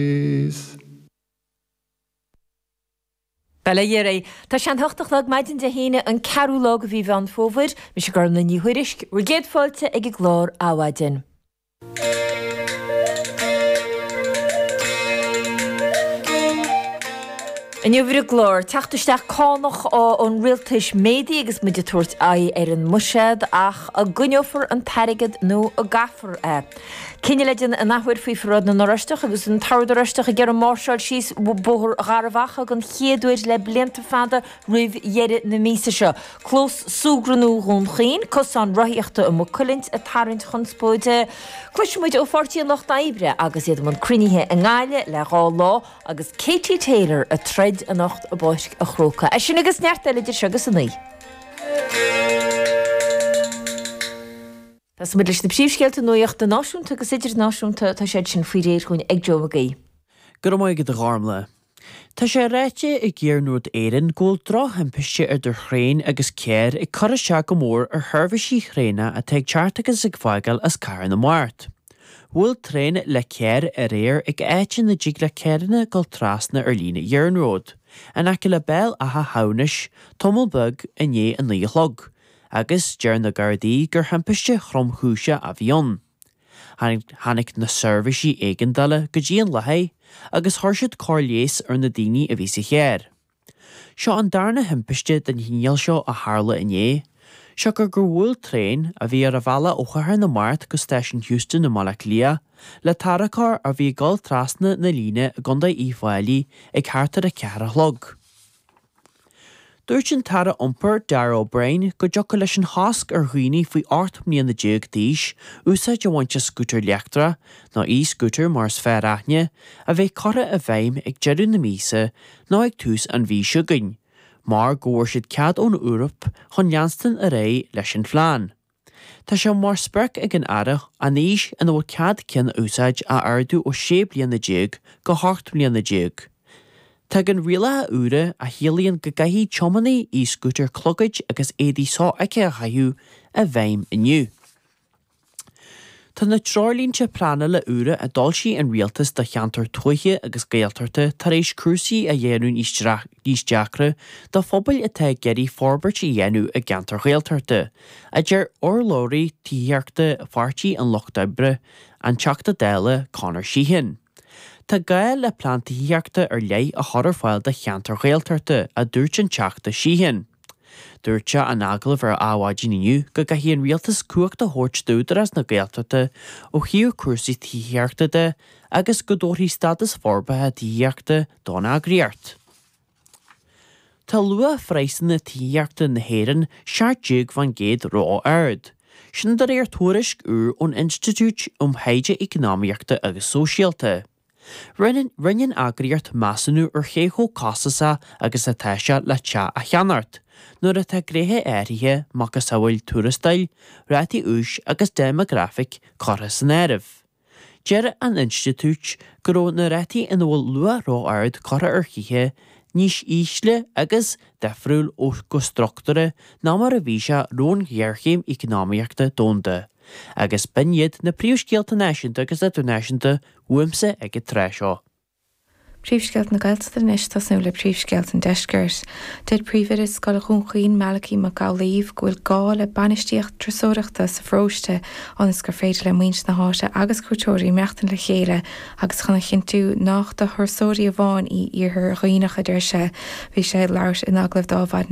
Is. Bail ó Dhia oraibh. Tá sé a hocht a chlog maidin Dé hAoine, an ceathrú lá de mhí Mheán Fómhair. Mise Gormlaith Ní Thuairisg. Bhur gcéad fáilte ag an gclár Adhmhaidin. Inniu ar an gclár, teacht isteach cánach ón rialtas méadaithe agus muid ag tabhairt aghaidh ar an mbuiséad, ach an gcoinneofar an t-airgead nó an gcaithfear é? Cinneadh le déanamh in athuair faoi Pharáid na nOráisteach agus an tOrd Oráisteach ag iarraidh máirseáil síos Bóthar Gharbhachaidh den chéad uair le blianta fada roimh dheireadh na míosa seo. Clós Súgartha nua Dhún Chaoin, Cosán Rothaíochta i Maigh Cuilinn ag tarraingt conspóide. Cloisfidh muid ó Pháirtí an Lucht Oibre agus iad i mbun cruinnithe i nGaillimh le dhá lá agus Katie Taylor ag troid anocht i bPáirc a' Chrócaigh. É sin agus neart eile idir seo agus a naoi. Tosóidh muid leis na príomhscéalta nuachta náisiúnta agus idirnáisiúnta, tá siad sin faoi réir dhúinn ag Joe McGee. Go raibh maith agat a Ghormlaith. Tá sé ráite ag Iarnród Éireann go bhfuil drochthimpiste idir traein agus carr ag cur isteach go mór ar sheirbhísí thraenach atá ag teacht agus ag fágáil as Cathair na Mart. Bhuail traein le carr aréir ag áit ina dtig le carranna dul trasna an líne iarnróid, in aice le Béal Átha hAmhnais, tamall beag i ndiaidh a naoi a chlog. agus deir na Gardaí gur timpiste thromchúiseach a bhí ann. Tháinig na seirbhísí éigeandála go dtí an láthair agus chuir siad cóir leighis ar na daoine a bhí sa charr. Seo an darna timpiste den chineál seo a tharla inné, siocair gur bhuail traein, a bhí ar a bhealach ó Chathair na Mart go Stáisiún Heuston i mBaile Átha Cliath, le tarracóir a bhí ag dul trasna na líne i gContae Uíbh Fháilí ag thart ar a ceathair a chlog. Dúirt an tAire Iompair, Darragh O'Brien, go dtiocfadh leis an chosc ar dhaoine faoi 18 mbliana d'aois úsáid a bhaint as scútair leictreach, nó e-scooter mar is fearr aithne, a bheith curtha i bhfeidhm ag deireadh na míosa nó ag tús an mhí seo chugainn, mar go bhfuair siad cead ón Eoraip chun leanstan ar aghaidh leis an phlean. Tá sé mar sprioc ag an Aire an aois ina bhfuil cead ceann a úsáid a ardú ó 16 bliana go hocht mbliana déag. Tagann rialacha úra a chiallaíonn go gcaithfidh tiománaithe e-scútair clogaid agus éadaí sofheicthe a chaitheamh i bhfeidhm inniu. Tá na treoirlínte pleanála úra a d'fhoilsigh an Rialtas do cheantair tuaithe agus Gaeltachta tar éis cúrsaí a dhéanamh níos deacra do phobail atá ag iarraidh forbairt a dhéanamh i gceantar Gaeltachta. a deir urlabhraí tithíochta Pháirtí an Lucht Oibre, an Teachta Dála Conor Sheehan. Tá gá le plean tithíochta ar leith a chur ar fáil do cheantair Ghaeltachta, a dúirt an Teachta Sheehan. Dúirt sé in agallamh ar Adhmhaidin inniu go gcaithfidh an Rialtas cumhacht a thabhairt d'Údarás na Gaeltachta ó thaobh cúrsaí tithíochta de agus go dtabharfaí stádas forbartha tithíochta don eagraíocht. Tá luach phraghsanna tithíochta na hÉireann 17% ró-ard. Sin de réir tuairisc úr ón Institiúid um Thaighde Eacnamaíochta agus Sóisialta. Rinne an eagraíocht measúnú ar cé chomh costasach agus atá sé le teach a cheannacht, nuair atá gnéithe áirithe macasamhail tuarastail, rátaí úis agus déimeagrafaic curtha san áireamh. Deir an Institiúid go raibh na rátaí ina bhfuil luach ró-ard curtha ar thithe níos ísle agus, difriúil ó, go struchtúrtha ná mar a bhí sé roimh an ghéarchéim eacnamaíochta domhanda, agus b'in iad na príomhscéalta náisiúnta agus idirnáisiúnta uaimse ag an tráth seo. Príomhscéalta na Gaeltachta Anois tosnú le príomhscéalta an deiscirt. Deir Príomhoide Scoil Dhún Chaoin Malachaí Mac Amhlaoibh go bhfuil gá le bainistíocht turasóireachta sa pharóiste ionas gur féidir le muintir na háite agus cuairteoirí maireachtaint le chéile agus chun a chinntiú nách do thurasóirí amháin í Iarthar Dhuibhneach a deir sé Bhí sé ag labhairt in agallamh dá